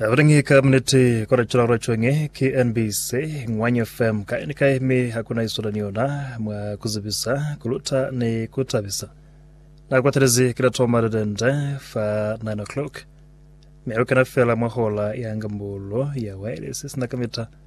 Abadangi ka minute kwa rachula kwa chonge KNBC Ngwanya FM ka ni ka eme hakuna isola ni yona mwa kuzibisa kuluta ni kutabisa na kwa telezi kila toma le dende fa 9 o'clock me ukana fela mwa hola ya ngambolo ya wireless sina kamita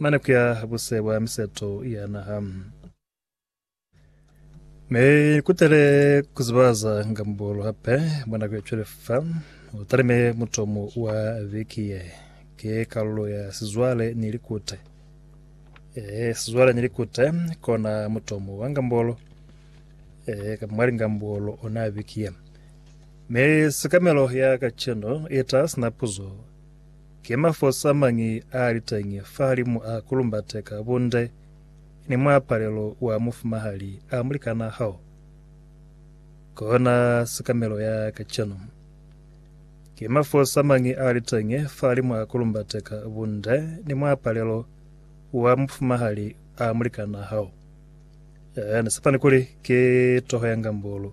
Mane ku ya buse bwa miseto ya naha. Mi kutele ku zibaza nga mubolo hape mwa nako ya cwale fa u talime mutomo wa viki ye. Ki kalulo ya sizwale ni likute. Ee, sizwale ni likute kona mutomo wa ngambolo, ee, kamba mwa lingambolo ona viki ye. Mi sikamelo ya kaceno i ta sina puzo Ki mafosi amañi aaliteñi fahalimu a kulumbate ka bunde ni muapalelo wa mufumahali a mulikanaa hao? Kona sikamelo ya kacenu. Ki mafosi amañi aaliteñi fahalimu a kulumbate ka bunde ni muapalelo wa mufumahali a mulikanaa hao? Ee, ni sepani kuli ki toho ya ngambulu.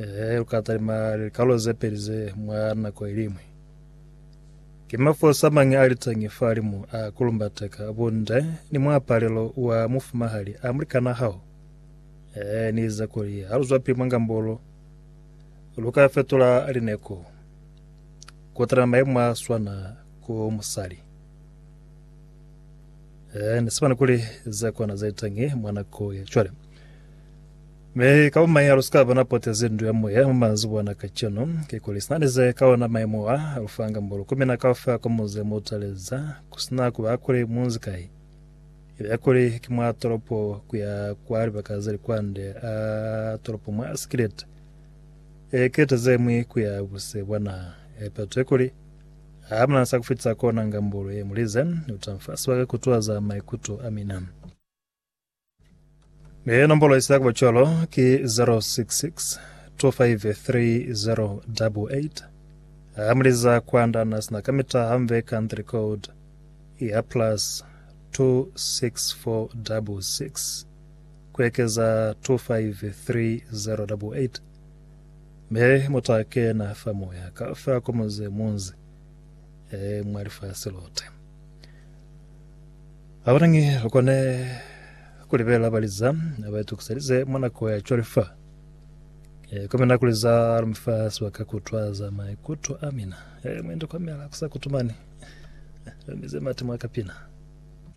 Ee, lu ka talima likalolo ze peli ze mwa nako iliñwi. Ki mafolisa mañi a liteñi fahalimu a kulumbateka bunde ni muapalelo wa mufumahali a mulikanaa hao? Ee, ni ize kuli ha lu zwapili mwa ngambolo, lu ka fetula lineko ku talima maimo a swana ku musali. Ee, ni sibana kuli ze kona ze liteñi mwa nako ya cwale. Mi ka bo mañi ha lu si ka ba na potezi ndu ya moya mwa mazuba ana kacenu? Kikuli sina ni ze ka ona maimo a lu fanga mbolo ku mina kaufela kwa muzi mo utaleza, ku si na ku ba kuli mu nzi kai. Ibe ya kuli ki mwa tolopo ku ya kwa libaka ze li kwande a tolopo mwa si kilete, e kilete ze ñwi ku ya buse bwa naha, e peto ye kuli, ha mu na sa ku fitisa ko nanga mbolo ye mu lize, ni uta fa sibaka ku tuhaza maikuto a mina. Ee, nombolo isa kuba cwalo ki 0662533088. Ha muliza kwanda na sina kamita hamve country code ya plus 26466 kuekeza 253088 me muta kena fa moya ka fa komoze munzi e mwa lifasi lote. Habanangi lukone kulibelela bali za baitukiselize mwa nako ya cwale fa e komena kuli za lumi fa sibaka kutwa za maikuto amina. E, mwendi komela kusa kutumani. Lumize mati mwa kapina.